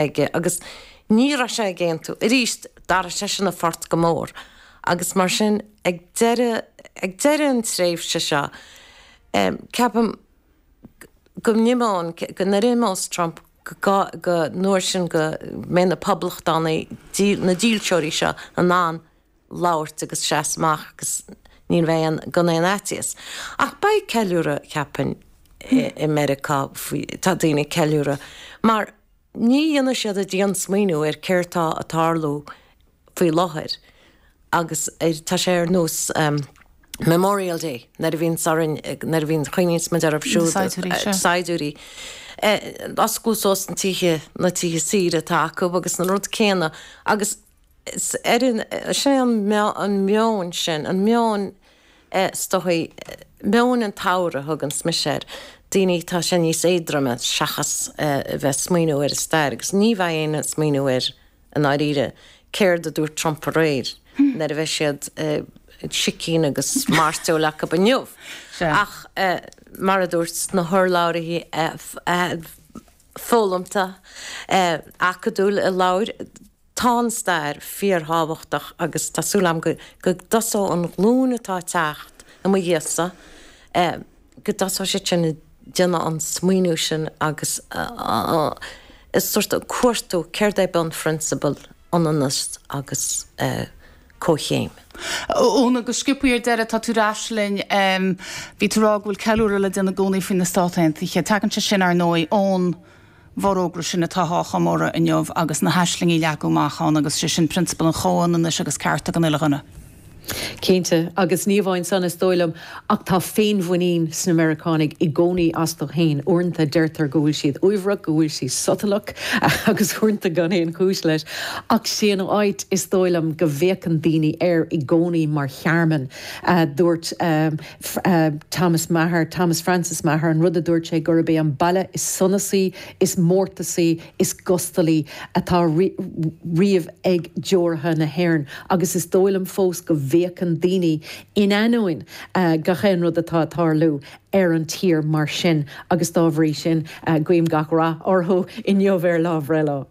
aige agus ní raibh sé ag aontú. Arís, d'athraigh sé sin a phort go mór agus mar sin, ag deireadh, ag deireadh an tréimhse seo, cheapfainn go n-imeoinn, go n-imeos Trump go, go, an uair sin go mbeidh na Poblachtánaigh, na dílseoirí seo in ann labhairt agus seasamh amach agus ní bheidh aon, gan aon fhaitíos. Ach beidh ceiliúradh, cheapfainn, i Meiriceá faoi, tá daoine ag ceiliúradh mar, Ní dhéanfaidh siad an diansmaoineamh ar céard tá ag tarlú faoi láthair agus tá sé ar nós Memorial Day nuair a bhíonns orainn, nuair a bhíonn, chuimhníonns muid orthu siúd, na saighdiúirí, oscailt suas na tithe, na tithe saoire atá acu agus an rud céanna agus. Is ar an, is é an meon sin, an meon, is dóigh, meon an tsamhraidh a thuganns mise air, daoine, tá sé níos éadroime seachas a bheith ag smaoineamh ar an stair, agus ní bheidh éinne ag smaoineamh air i ndáiríre, céard a dúirt Trump aréir nuair a bheidh siad sicín agus mairteoil acub inniu ach mar a dúirt na hurlabhraithe foghlamtha acadúil a labhair. Tá an stair fíorthábhachtach agus tá súil agam go dtosóidh an ghlúin atá ag teacht i mo dhiaidhsa, go dtosóidh siad sin ag déanamh an smaoineamh sin agus ag sórt cuartú céard é bunphrionsabail ionannas agus comhchéim. Eoin, go sciobtha ar deireadh, tá tú ar ais linn. Bhí tú ag rá go bhfuil ceiliúradh le déanamh i gcónaí faoi na Stáit Aontaithe. Tagann sé sin, ar ndóigh, ón. bhforógra sin atá á chomóradh inniu agus na haislingí a leagadh amach ann, agus sé sin prionsabal an chomhionannais agus cearta don uile dhuine. Cinnte, agus ní amháin san, is dóigh liom, ach tá féinmhuinín sna Meiriceánaigh i gcónaí astu féin. Uaireanta deirtear go bhfuil siad uaibhreach, go bhfuil siad sotalach, agus uaireanta gan aon chúis leis. Ach is é an áit, is dóigh liom, go bhféachann daoine air i gcónaí mar thearmann. Dúirt. Thomas Meagher, Thomas Francis Meagher, an rud a dúirt sé gurb é an baile is sonasaí, is mórtasaí, is gustalaí a tharla riamh ag deoraithe na hÉireann agus is dóigh liom fós go bhféachann daoine, in ainneoin gach aon rud atá ag tarlú, ar an tír mar sin agus dá bhrí sin guím gach rath orthu inniu ar lá a mbreithlae.